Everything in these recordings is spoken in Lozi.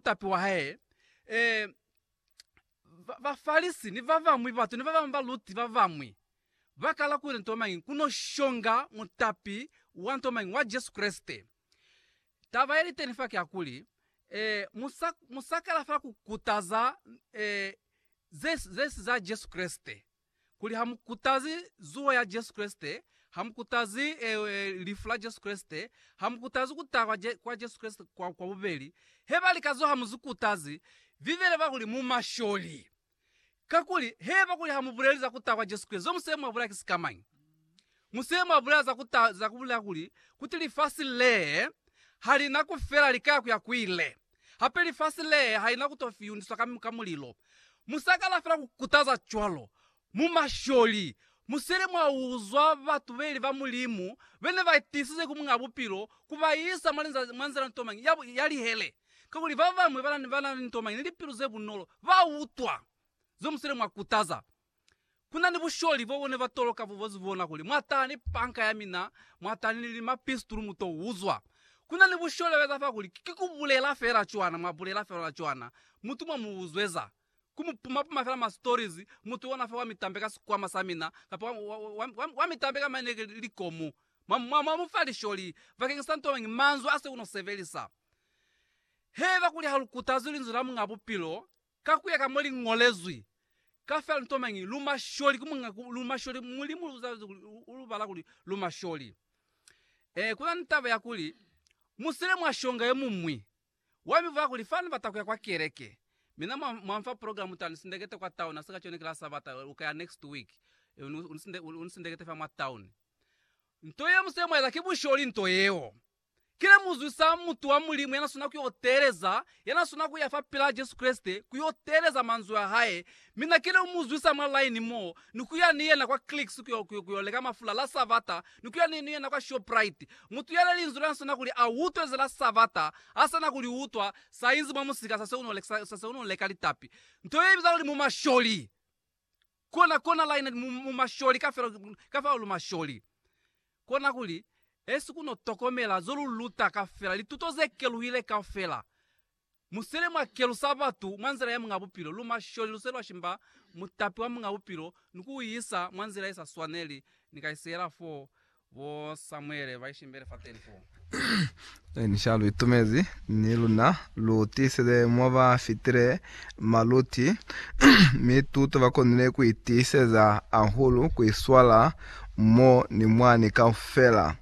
mutapi wa hae, ee, ba, Bafalisi ni babañwi batu ni babañwi baluti babañwi ba kala kuli nto mañi ku no shonga mutapi wa nto mañi wa Jesu Kreste. Taba ye li teni fa ki ya kuli, ee, mu sa, mu sa kala fela ku kutaza, ee, ze, ze si za Jesu Kreste. kuli ha mu kutazi zuho ya Jesu Kreste, ha mu kutazi e, e, lifu la Jesu Kreste, ha mu kutazi ku taha kwa, Je, kwa Jesu Kreste kwa, kwa bubeli. He ba lika zo ha mu zi kutazi, Bibele ba kuli mu masholi. Kakuli, heba kuli ha mu buleli za ku taha kwa Jesu Kreste, zo mu se mwa bulaya ki sikamañi? Mushe mwabulaya za kuta za kubulaya kuli, kuti lifasi lee halina kufela likaya kuya kuile. Hape lifasi lee halina kuto fiyundiswa ka, ka mulilo. Musakana fela kukutaza cwalo. Mu masholi, musele mwauzwa batu beli ba Mulimu bene baitiisize ku Muñaa Bupilo kubaisa mwa linza, mwa nzila nto mañi ya, ya lihele. Kakuli babañwi bana, banani nto mañi ni lipilu zebunolo, bautwa zo musele mwakutaza. Ku na ni busholi bo bu ne ba toloka bubozi bona kuli, Mwa tala ni panka ya mina, mwa tala ni limapistulu, mu to uzwa. Ku na ni busholi ba eza fa kuli, Ki ku bulela fela cwana, mwa bulela fela cwana. Mutu mwa mu uzweza. Ku mu puma-puma fela ma stories, mutu ona fa wa mi tambe ka sikwama sa mina, kapa wa, wa, wa, wa, wa, wa mi tambe ka maine ki likomu. Mwa, mwa, mwa mu fa lisholi bakeñisa nto mañi, manzwi a se u no sebelisa. Haiba kuli ha lu kutazi Linzwi la Muñ'a Bupilo, Ka kuya ka mo li ngolezwi, ka fela nto mañi, lu masholi ku Muñ'a ku, lu masholi, Mulimu lu zalezi kuli lu, u lu bala kuli lu masholi. E, ku na ni taba ya kuli, mu sile mwa shonga yo muñwi. Wa mi bula kuli, Fani bata kuya kwa keleke. Mina mwa, mwa nfa program ta ni sindekete kwa town, ha si ka cone ki la Sabata, u ka ya next week. E, u ni, u ni sinde, u ni sindekete fa mwa town. Nto yeo mu sile mwa eza, ki busholi nto yeo. Ki le muzwi sa mutu wa Mulimu ya na swana ku yo teeleza, ya na swana ku ya fa pela Jesu Kreste ku yo teeleza manzwi a hae. Mi na kile ku mu zwisa mwa line mo, ni ku ya ni yena kwa Clicks ku yo, ku yo leka mafula la Sabata, ni ku ya ni, ni yena kwa Shoprite. Mutu yale linzwi la na swana kuli a utwe ze la Sabata, ha sa na ku li utwa, sa inzi mwa musika sa se u no leka, sa se u no leka litapi. Nto ye ibiza kuli mumasholi. Kona, kona laina mu, mu masholi kafela, kafela lu masholi. Kona kuli, Esi kuno tokomela zo lu luta kafela, lituto ze keluhile kafela. Mu sele mwa kelusa batu mwa nzila ya Muñ'a Bupilo, lu masholi, lu se lwa shimba Mutapi wa Muñ'a Bupilo ni ku u isa mwa nzila ye sa swaneli, ni ka isiela foo. Bo Samuele ba ishimbele fateni foo. Ni ni sha lu itumezi ni luna lu tiisele mo ba fitile maluti, mi tuto ba konile ku itiiseza ahulu ku iswala mo ni mwani kaufela.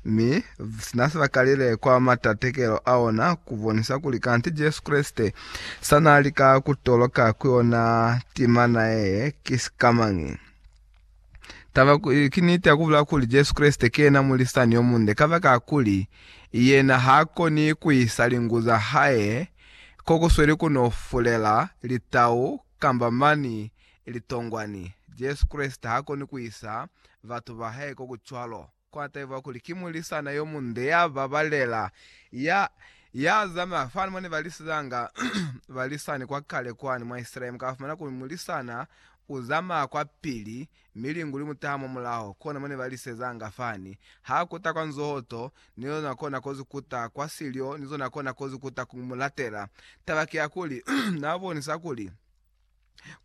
Mi sina si ba kalile kwa matatekelo a ona ku bonisa kuli kanti Jesu Kreste sa na lika ku toloka ku yona timana ye ki sikamañi. Taba ku- ki niti ya ku bulelwa kuli Jesu Kreste ki yena mulisani yo munde kabakakuli yena ha koni ku isa lingu za hae ko ku sweli ku n'o fulela litau kamba mani litongwani. Jesu Kreste ha koni ku isa batu ba hae ko ku cwalo. Kwa taiwa kuli ki mulisana yo munde ya babalela, ya, ya zamaya fani mone ba lisizanga ba lisani kwa kale kwani mwa Israele. Mu ka fumana kuli mulisana u zamaya kwa pili, mi lingu li mu taha mwa mulaho. Kona mone ba lisezanga fani. Ha kuta kwa nzoho to, ni zona kona kozi kuta kwa silyo, ni zona kona kozi kuta ku mu latela. Taba ki ya kuli, na bonisa kuli,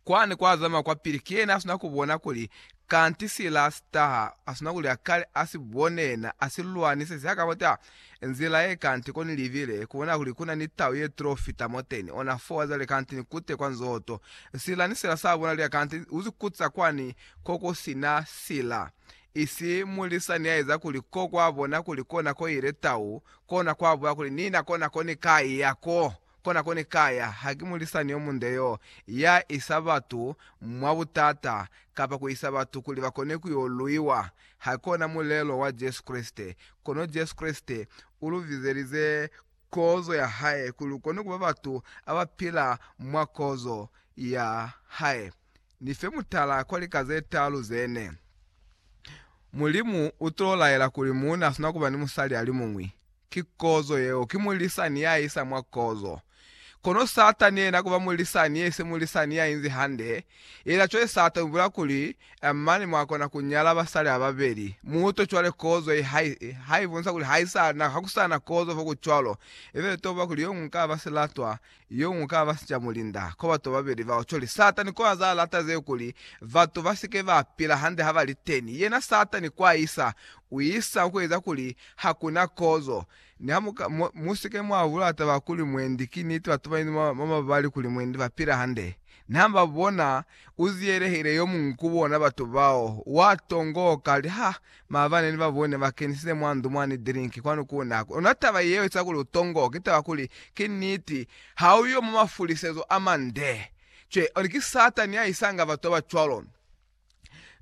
kwani kwazama kwapili kena asuna kubona kuli kanti sila sitaha asuna kuli akale asibone na asilwanise siakabota nzila ye kanti koni libile kubona kuli kuna ni tau ye tlo fita moteni ona foo azale kanti nikute kwa nzoho to sila ni sila sabona lia kanti uzikutsa kwani kokusina sila isi mulisa niaeza kuli ko kwabona kuli kona koile tau kona kwabuya kuli nina kona koni kai yako Kona ko ni ka ya haki mulisani yo munde yo ya isa batu mwa butata kapa ku isa batu kuli ba kone ku yo luiwa. Ha kona mulelo wa Jesu Kreste. Kono Jesu Kreste u lu bizelize kozo ya hae kuli lu kone ku ba batu a ba pila mwa kozo ya hae. Ni fe mutala kwa lika ze taalu ze ne. Mulimu u to laela kuli muuna sina kuba ni musali alimuñwi. Ki kozo yeo, ki mulisani ya isa mwa kozo. Kono Satani yena kuba mulisani ye se mulisani ya inzi hande, yena cwale sa to ibulela kuli, Eh, mane mwa kona ku nyala basali ba babeli. Muto cwale kozo ye ha, ha i bonisa kuli ha i sa na, ha ku sa na kozo fo ku cwalo, ifela to ba kuli yo muñwi ka ba silatwa Yo ñwi ka ba sicamulinda. Ko batu babeli bao coli. Satani ko aza lata zeo kuli batu ba si ke ba pila hande ha ba li teni. Yena Satani ko a isa, u isa ku eza kuli ha ku na kozo. Niha mu ka, mu, mu si ke mwa bula taba kuli mwendi ki niti, batu ba inzi mwa, mwa mabali kuli mwendi ba pila hande. Niha ba bona u ziyelehile yo muñwi ku bona batu bao, wa tongoka, a li, Ha, Maabane ni babo ne ba kenisile mwa ndu mwa ni dirinki kwanu ku na ku nwa taba yeo ica kuli u tongo, ki taba kuli, ki niti, ha u yo mwa mafulisezo a mande. Cwe, oni ki Satani ya isanga batu ba ba cwalo.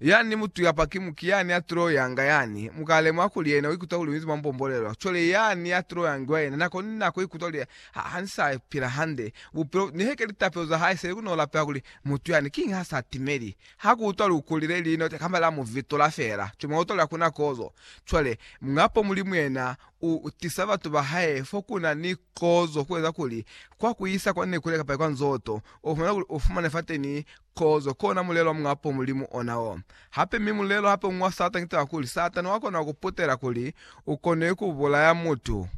Yani mutu kapa ki muki yani ya tilo yanga yani, mu ka lemuha kuli yena u ikuta kuli u inzi mwa mbombolelo. Cwale yani ya tilo yangiwa yena nako ni nako u ikuta kuli, Ha, ha ni sa pila hande. Bupilo, nihe ke litapelo za hae seli ku no lapeha kuli, Mutu yani, kiñi ha sa timeli? Ha ku utwa lukuli le li note kamba la mu vitula fela, ki mauto la kuna kozo. Cwale, Muñapo Mulimu yena u tisa batu ba hae fo ku na ni kozo ku eza kuli, kwa ku isa kwa Nekule kapa kwa Nzoto, u fumana kuli u fumane fateni kozo, kona mulelo wa Muñapo Mulimu ona o. Hape, mi mulelo hape uñwi wa Satani ki taba kuli, Satani wa kona ku putela kuli u kone ku bulaya mutu.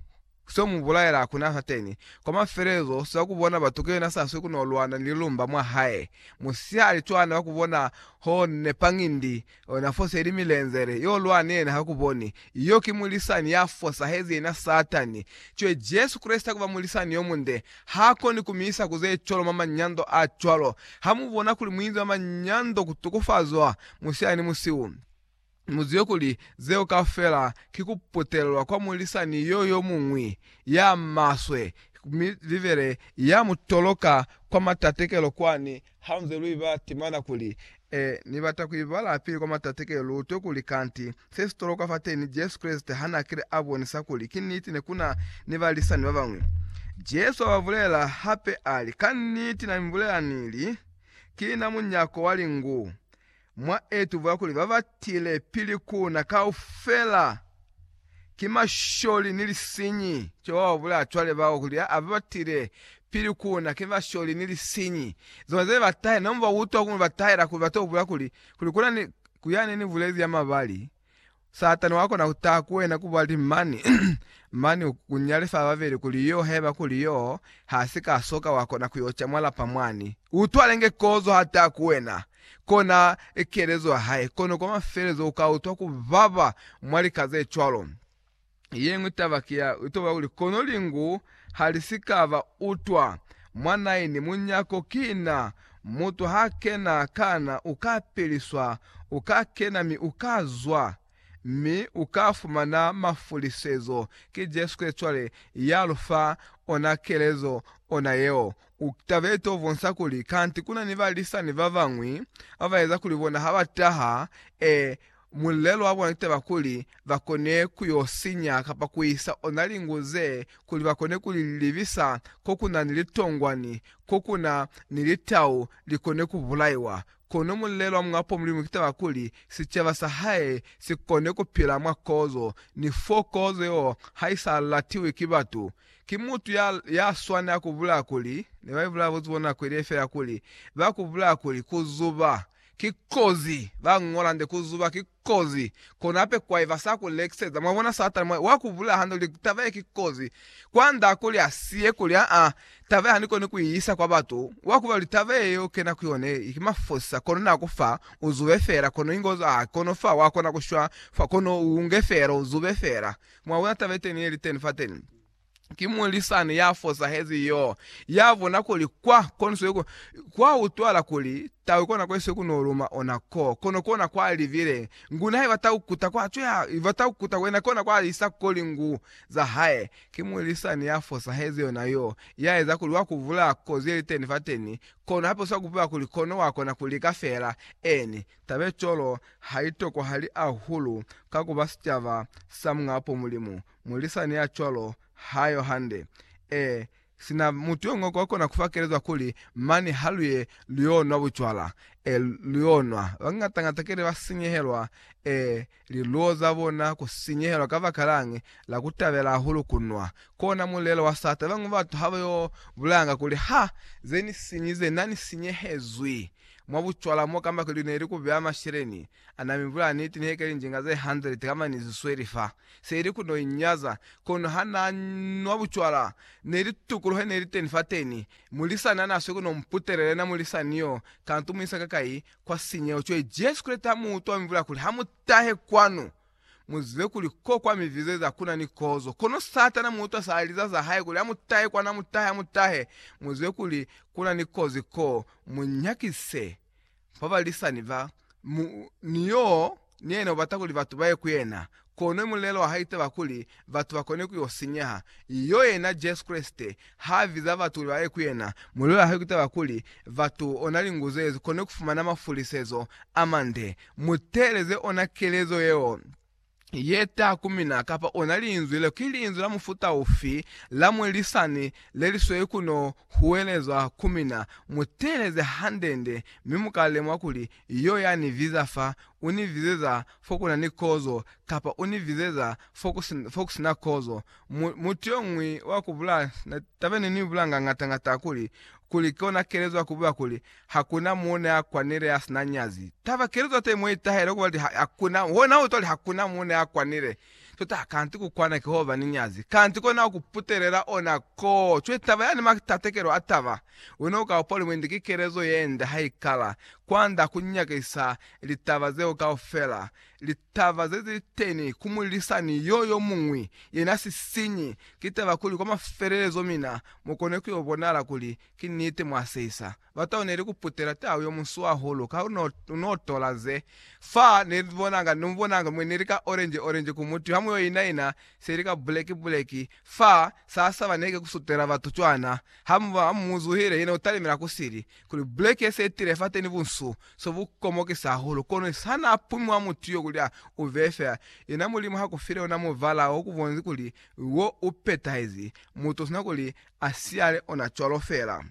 Seo mu bulaela hakuna sateni. Kwa mafelelezo, siba ku bona batu kuyena sa swi ku no lwana ni lilumba mwa hae. Musihali cwana wa ku bona ho ne pangindi na foseli milenzele, yo lwana ni yena ha ku boni. Yo ki mulisani ya fosahezi yena satani. Cwe Jesu Kreste kuba mulisani yo munde. Ha koni ku mi isa ku ze cwalo mwa manyando a cwalo. Ha mu bona kuli mu inzi mwa manyando ku tukufazwa, musihali ni musiu. Muzibe kuli, zeo kaufela ki ku putelelwa kwa mulisani yo yo muñwi ya maswe, mi Bibele ya mu toloka kwa matatekelo kwani. Ha nze lu iba timana kuli, E, ni bata ku ibala pili kwa matatekelo, lu utwe kuli kanti se si tolokwa fateni, Jesu Kreste ha na kile a bonisa kuli ki niti ne ku na ni balisani ba bañwi. Jesu a ba bulela hape a li, Ka niti na mi bulela ni li, Ki na munyako wa lingu. Mwa itubula kuli ba ba tile pili ku na kaufela ki masholi ni lisinyi. Jehova u bulela cwale bao kuli a ba ba tile pili ku na ki masholi ni lisinyi. Zona ze ba tahela, nonbo ba utwa ku ba tahela kuli ba to bulela kuli, kuli ku na ni, ku yani ni bulezi ya mabali. Satani wa kona ku taha ku wena ku bali mani, mani ku nyale fa babeli kuli yo, haiba kuli yo ha si ka soka wa kona ku yo ca mwa lapa mwani. U twale nge kozo ha taha ku wena, kona kelezo ya hae, kono kwa mafelezo u ka utwa ku baba mwa lika ze cwalo. Yeñwi taba ki ya kutoba kuli, kono lingu ha li si ka ba utwa mwa naini munyako, ki na. Mutu ha kena kana, u ka piliswa, u ka kena mi u ka zwa, mi u ka fumana mafulisezo. Ki Jesu Kreste cwale ya lu fa ona kelezo, ona yeo. U taba ye to bonsa kuli, kanti kuna ni balisani babañwi ba ba eza kuli bona ha ba taha, e, Mulelo wa bona taba kuli ba kone ku yo sinya kapa ku isa ona lingu ze kuli ba kone ku li libisa ko ku na ni litongwani, ko ku na ni litau li kone ku bulaiwa. Kono mulelo wa Muñ'a Po Mulimu ki taba kuli sicaba sa hae si kone ku pila mwa kozo, ni fo kozo yeo ha i sa latiwi ki batu. Ki mutu ya, ya swanela ku bulaya kuli, ne ba ibulaya buzuba nako ye liye fela kuli, ba ku bulaya kuli, ku zuba, Ki kozi, ba ñola nde ku zuba, ki kozi. Kono hape kwa eba sa ku lekiseza, mwa bona, Satana mwa, wa ku bulaya hande luli, taba ye ki kozi. Kwa nda kuli a siye kuli, Aa, taba ye ha ni koni ku i isa kwa batu, wa kuba luli taba ye yo kena ku yone, i ki mafosisa, kono na ku fa, u zube fela, kono inge u zwa ha, kono fa, wa kona ku shwa fa, kono u unge fela, u zube fela. Mwa bona taba yeteni ye liteni fateni? ki mulisani ya fosahezi yo, ya bona kuli kwa koniswe ku, kwa utwala kuli tau ikona koniswe ku no luma ona ko, kono kona kwa libile ngu nae ba tau kuta kwa cwe ya, ba tau kuta kwena kona kwa isa koli ngu za hae. Ki mulisani ya fosahezi yona yo, ya eza kuli wa kuvula ko ze li teni fateni, kono hape uswa kupeba kuli kono wa kona ku lika fela. Eeni, taba ye cwalo ha i tokwahali ahulu ka ku ba sicaba sa Muñ'a Mulimu. Mulisani ya cwalo ha yo hande. Ee, sina mutu yo ñwi ko kona ku fa kelezo ya kuli, Mane ha lu ye lu y'o nwa bucwala. Ee, lu y'o nwa. Bañata-ñata kile ba sinyehelwa. Ee, liluo za bona ku sinyehelwa kabakalañi la ku tabela hahulu ku nwa. Kona mulelo wa sata. Bañwi batu ha ba yo bulayanga kuli, Ha ze ni sinyize, na ni sinyehezwi mwa bucwala mo kamba kuli ne li ku beya masheleni A na mi bulaya niti nihe keli njinga ze 100 kamba ni zi sweli fa se ili ku no inyaza, kono ha na nwa bucwala ne li tukuluhe ne li teni fateni. Mulisani a na swi ku no mputelela yena mulisani yo, kantu mu isa kakai kwa sinyeho. Cwale Jesu Kreste ha mu utwa a mi bulaya kuli, Ha mu tahe kwanu, mu zibe kuli ko kwa mi vize za kuna ni kozo. Kono Satana mu utwa sa liza za hae kuli, Ha mu tahe kwanu, ha mu tahe, ha mu tahe, mu zibe kuli kuna ni kozi ko, mu nyakise. ba balisani ba mu, ni yo ni yena ubata kuli batu baye ku yena. Kono mulelo wa hae itaba kuli batu bakone ku yo sinyeha. Yo yena Jesu Kreste ha biza batu kuli baye ku yena, mulelo wa hae ki taba kuli batu ona linguzu yezi kone kufumana mafulisezo amande. Muteeleze ona kelezo yeo. ye ta ku mina kapa ona linzwi le, ki linzwi la mufuta ufi la mwelisani le li sweli ku no huwelezwa ku mina? Mu teeleze hande-nde, mi mu ka lemuha kuli Yo ya ni viza fa, u ni vizeza fo ku na ni kozo, kapa u ni vizeza fo ku si, fo ku si na kozo. Mu, mutu yo muñwi wa ku bula, na taba ye ne ni bula ngangata-ngata kuli, kuli kona kelezwa ku bula kuli, Hakuna muuna ya kwanile ya sina nyazi. Taba kili zote mo itahele kuba li hakuna, hona utwa li hakuna muuna ya kwanile. Tota, kanti kukwana ki hoba ni nyazi. Kanti kona ukuputelela ona ko. Cwe taba yani ma tatekelo a taba. Wena uka upa limwindi ki kelezo yende haikala, kwanda kunyakisa litaba zeo kaufela. Li, Taba zeziliteni ku mulisani yo yomuñwi yena sisinyi, ki taba kuli kwa mafelelezo mina mukone kuyo bonala kuli ki niti mwa seisa. Batau neli kuputela tau yo musu hahulu ka unotola ze fa nelibonanga, nomubonanga mwe neli ka orange orange ku mutu hamu yo ina ina seli ka buleki buleki fa sasa baneke kusutela batu cwana hamu muzuhile yena utalimela kusili kuli buleke se tile fateni bunsu so bu komokisa hahulu, kono sa na pumi wa mutu yo kuli a u veye fela, yena Mulimu ha ku file ona muvala o ku bonzi kuli wo u petahezi, mutu sina kuli a siyale ona cwalo fela.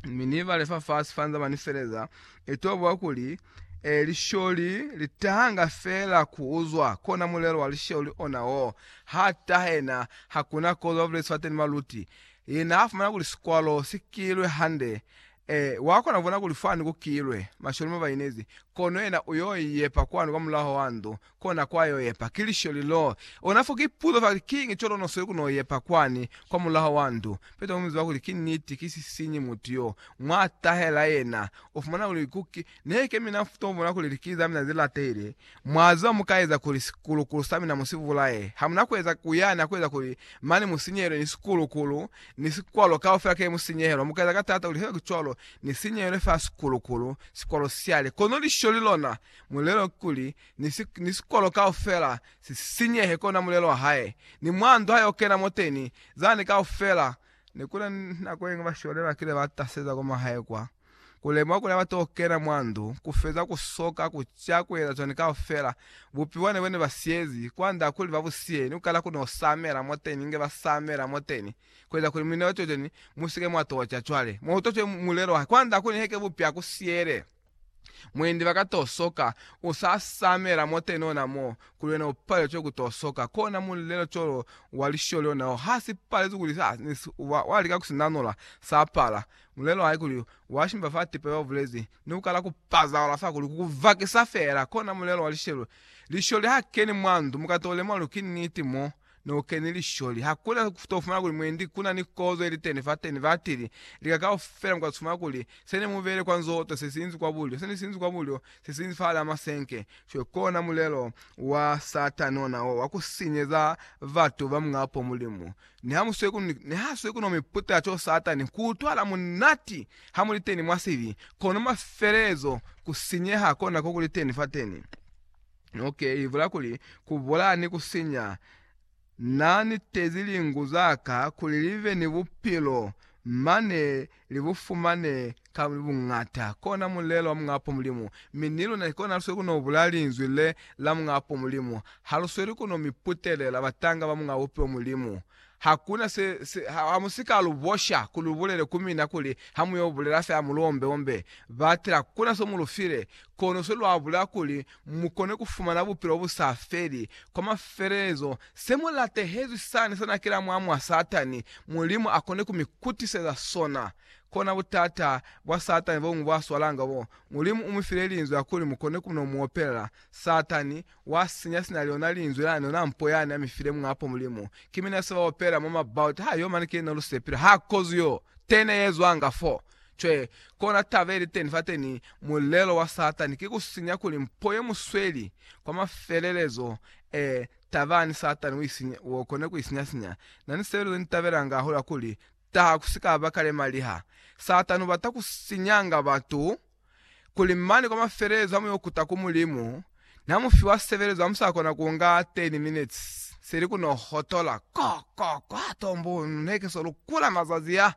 Mi ni bale fafasi fa nzaba ni feleza, i to buwa kuli, E, lisholi li tahanga fela ku uzwa, kona mulelo wa lisholi ona wo, ha tahe na, hakuna kozo ba bulezi fateni baluti, Ye naafumana kuli sikwalo si kilwe hande, ee, wa kona kubona kuli fwani ku kilwe. Masholi mo ba inezi, kono yena uyo yepa kwanu kwa mulaho wa ndu, kona kwa yo yepa. Ki lisholi lo. Ona fo ki puzo fa kuli, Kiñi co lo no sweli ku no yepa kwani kwa mulaho wa ndu? Peter u mi ziba kuli ki niti, ki sisiñi mutu yo. Mwa tahela yena, u fumana kuli ku ki, Neke mina mfutobona kuli likili zamina zilatele, mwaziba mukaeza kuli sikulukulu samina musivulaye. Hamuna kueza kuyani akueza kuli mane musinyehele ni sikulukulu, ni sikwalo kaufela kile musinyehelwa. Mukaeza ka taata kuli haiba ki cwalo, nisinyehele fa sikulukulu, sikwalo siale. Kono lisholi lona, mulelo kikuli, ni si, ni sikwalo kaufela sisinyehe, kona mulelo wahae, ni mwandu hae okena moteni, zani kaufela. Nekuna ni nako yengwe bashole bakile bataseza kwa mahae kwa. Ku lemuha kuli abati ku kena mwa ndu ku feza ku soka ku ca ku eza cwani kaufela, bupiwa ne bo ne ba siyezi, kwa nda kuli ba bu siye, ni ku kala ku n'o samela mwoteni inge ba samela mwoteni, ku eza kuli muinelo co cwani mu si ke mwa t'o ca cwale. Mwa utwa cwale mulelo wa hae, kwa nda kuli heke bupi a ku siyele, mwendi ba ka t'o soka, u sa samela mwoteni ona mo, kuli wena u palelwe cwale ku t'o soka. Kona mulelo co lo wa lisholi ona o, ha si palezwi kuli sa, ni si, wa, wa lika ku si nanula, sa pala. Mulelo wa hae kuli wa shimba fa tipa ya bubulezi ni ku kala ku pazahala fa kuli ku ku vakisa fela, kona mulelo wa lishelo. Lisholi ha keni mwa ndu mu ka to lemwa lu ki niti mo ne ku keni lisholi. Ha ku na ku to fumana kuli mwendi ku na ni kozo ye liteni fa teni fa tili lika kaufela mu ka fumana kuli se ne mu bele kwa nzoto se si inzi kwa bulyo, se ne si inzi kwa bulyo, se si inzi fahal'a masenke. Cwale kona mulelo wa Satani ona wo wa ku sinyeza batu ba Muñ'a po Mulimu. Nihasweko no mi puta co Satani ku utwala munati ha muli teni mwa sibi, kono mafelelezo ku sinyeha kona ko kuli teni fateni. Ok, i bula kuli, Ku bulaya ni ku sinya. Na nitezi lingu za ka kuli li be ni bupilo mane Li bu fumane ka buñata. Kona mulelo wa Mung'apo Mulimu. Mi ni luna ki kona halusweli ku no bula Linzwi le la Mung'apo Mulimu. Halusweli ku no mi putelela, batanga ba Muñ'a Bupi wa Mulimu. Hakuna se, se, ha, ha mu si ka lu bosha ku lu bulele ku mina kuli, Ha mu yo bulela fela mu lu ombe-ombe. Batela, kuna so mu lu file, kono sweli lwa bulela kuli, mu kone ku fumana bupilo bu sa feli. Kwa mafelelezo, se mu latehezwi sani sa nakela mwa mwa Satani, Mulimu a kone ku mi kutiseza sona. Kona butata bwa Satani bo mu bwa swalanga bo. Mulimu u mi file Linzwi la kuli mu kone ku no mu opelela. Satani, wa sinya sina liona Linzwi lani, yona mpo yani a mi file Muñ'a po Mulimu. Ki mina se ba opelela mwa mabauta, ha yo mane ki yena lusepile, ha kozi yo tene ye zwanga foo. Cwee, kona taba iliteni fateni, mulelo wa Satani ki kusinya kuli mpo ye musweli kwa mafelelezo. Ee, tabani, Satani ukone kuisinya-sinya. Nani seo nitabelanga hahulu hakuli, taha kusikaba kale maliha. Satani ubata kusinyanga batu kuli mane kwa mafelelezo ha mu yo kuta ku Mulimu, na mu fiwa sebelezo ha mu sa kona ku nga 10 minutes seli ku no hotola ko, ko, kwa tombo. Ne ke so lukula mazazi a.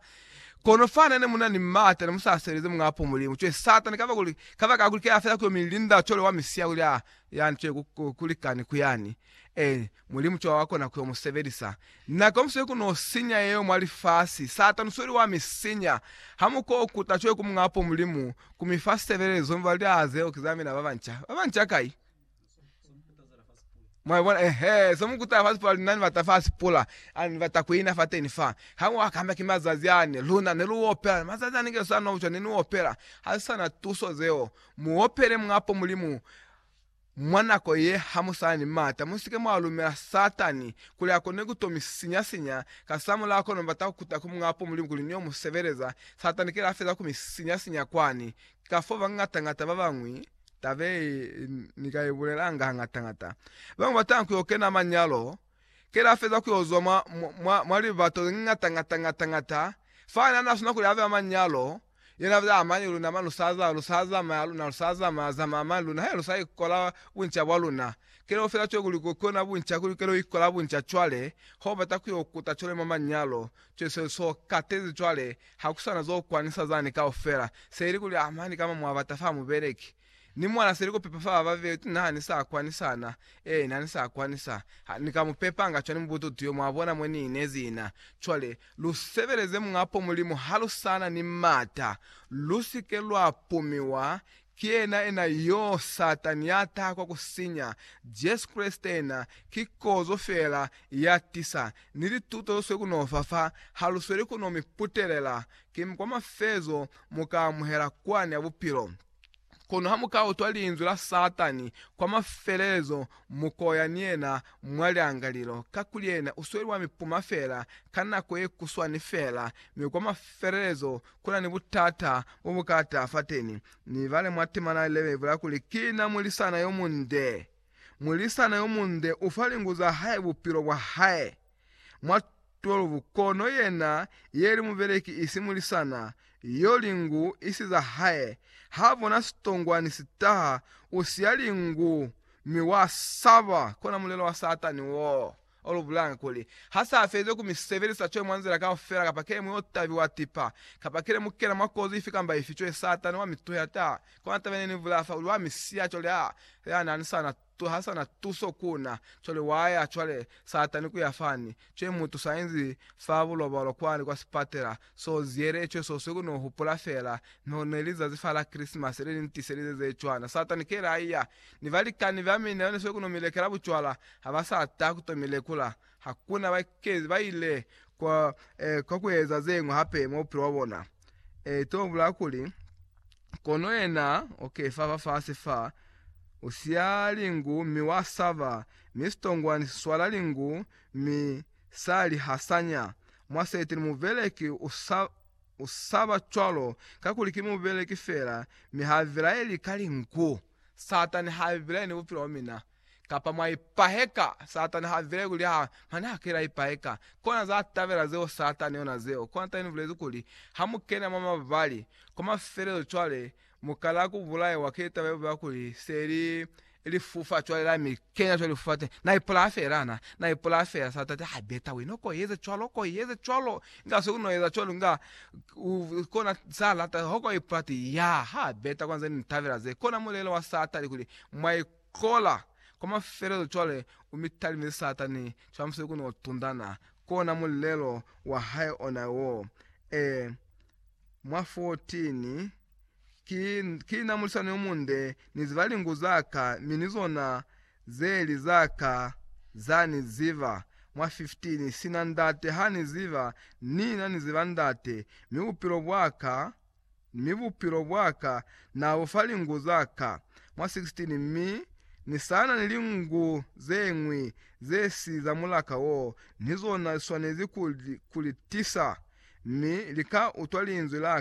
Kono fa nene mu na ni mata, ne mu sa sebelezi Muñaa po Mulimu. Cwale Satani, kabakuli, kabakakuli ke a fela ku yo mi linda cwalo wa mi siya kuli a, yani, cwale ku, ku, ku likani ku yani. Ee, Mulimu ki wa wa kona ku yo mu sebelisa. Na ka mu sweli ku no sinya yeo mwa lifasi. Satani usweli wa mi sinya. Ha mu ko kuta cwale ku Muñ'a po Mulimu, ku mi fa sebelezo, mi ba luli, Aa, zeo ki za mina ba banca. Ba banca kai? Mwa bona? Eehe. Zo mu kutela fasi pula, luna ni bata fasi pula. Ani, ni bata ku ina fateni fa. Ha mu akamba ki mazazi ani, luna ne lu opela. Mazazi ani nge sa no bucwa, ne ni opela. Ha si sa na tuso zeo. Mu opele Muñ'a po Mulimu. Mwa nako ye, ha mu sa na ni m'ata, mu si ke mwa lumela Satani kuli a kone ku to mi sinya-sinya. Kasamulaho kono mu bata ku kuta ku Muñ'a po Mulimu kuli ni yo mu sebeleza. Satani ki la feza ku mi sinya-sinya kwani. Ki kafoo bangata-ngata ba bañwi, taba ye ni ka i bulelanga hangata-ngata, ba mu batanga ku yo kena manyalo, ki la feza ku yo zwa mwa, mwa, mwa libato ze ngata-ngata-ngata-ngata fa ne a n'a swana kuli a be mwa manyalo. Yena za amani luna ma lusaza lusa zamaya luna lusa zamaya zamaya mani luna he lusa ikola bunca bwa luna kele ofela cwale kuli ko kiona bunca kuli kele ikola bunca cwale ho bata kuyo kuta cwale mwa manyalo cwale se so katezi cwale hakusana zo kwanisa zani kaufela se ili kuli amani kama mwabata fa mubeleki Ni mwana seli kupepa fa baba betu na hani sa kwanisa na. Ee, na ni sa kwanisa. Ha ni ka mu pepanga cwani mubututu yo, mwa bona mo ni inezi ina. Cwale, lu sebeleze Muñ'a po Mulimu ha lu sa na ni m'ata. Lu si ke lwa pumiwa ki yena ena yoo, Satani ya taha kwa ku sinya. Jesu Kreste ena ki kozo fela ya tisa, ni lituto lu swe ku n'o fa fa, ha lu sweli ku n'o mi putelela. Kiñi kwa mafezo mu ka amuhela kwani ya bupilo? Kono ha mu ka utwa linzwi la Satani kwa mafelelezo, mu koya ni yena mwa liangalilo, kakuli yena u sweli wa mi puma fela ka nako ye kuswani fela, mi kwa mafelelezo ku na ni butata bo bu ka taha fateni. Ni bale mwa temana ya Levi ibula kuli, Ki na mulisana yo munde. Mulisana yo munde u fa lingu za hae bupilo bwa hae. mwa 12 kono yena yeli mubeleki isi mulisana yo lingu isi za hae ha bona sitongwani sitaha usiya lingu mi wa saba kona mulelo wa satani wo olu bulanga kuli ha sa fezi ku mi sebelisa cwe mwa nzila kaufela kapa kele mwi otabi wa tipa kapa kele mu kena mwa kozi ifi kamba ifi cwe satani wa mi tuhela ta kona taba yene ni vula fa kuli wa mi siya coli a ya nani sana Cwe ha sa na tuso ku na, cwale wa ya cwale, Satani, ku ya fani. Cwe mutu sa inzi fa bulobalo kwani kwa sipatela, so ziele cwe soswi ku no hupula fela, no ne li zazi fa la Krisimasi le li ntiselize ze cwana. Satani kele a iya, ni balikani ba mine ba ne swe ku no mi lekela bucwala, ha ba sa ta ku to mi lekula. Hakuna bakeezi ba ile kwa, eh, kwa ku eza ze ñwi hape mwa bupilo bwa bona. Eh, to bulaa kuli, Kono yena, okay, fa, fafasi fa, u siya lingu mi wa saba, mi sitongwani si swala lingu, mi sa li hasanya. Mwaseti ni mubeleki u sa, u saba cwalo, kakuli ki mubeleki fela, mi ha bilaeli ka lingu. Satani ha bilaeli ni bupilo bwa mina. Kapa mwa ipaheka, Satani ha vile kuli ha mane ha kela ipaheka. Kona za tabela zeo Satani ona zeo. Kona tani ni bulezi kuli, ha mu kena mwa mabali, kwa mafelelezo cwale mu kala ku bulaiwa ki litaba ye bubeha kuli se li lifufa cwale la mi kenya cwale lifufa teni. Na ipulaya fela na, na ipulaya fela. Satani ha beta wena ko yeze cwalo, ko yeze cwalo. Inga se uno eza cwalo inga u kona sa lata, ha ko ipulaya ti, ya, ha beta kona zani ni tabela ze. Kona mulelo wa Satani kuli mwa Kola kwa mafelelo cwale u mi talime Satani cwale musali ku no tundana, kona mulelo wa hae ona wo, ee, mwa 14, Ki, ki na mulisani yo munde, ni ziba lingu za ka, mi ni zona ze li za ka za ni ziba, mwa 15, Sina Ndate ha ni ziba, ni na ni ziba Ndate, mi bupilo bwa ka, mi bupilo bwa ka na bu fa lingu za ka mwa 16, mi ni sa na ni lingu ze ñwi ze si za mulaka wo, ni zona li swanezi ku li tisa, mi li ka utwa linzwi la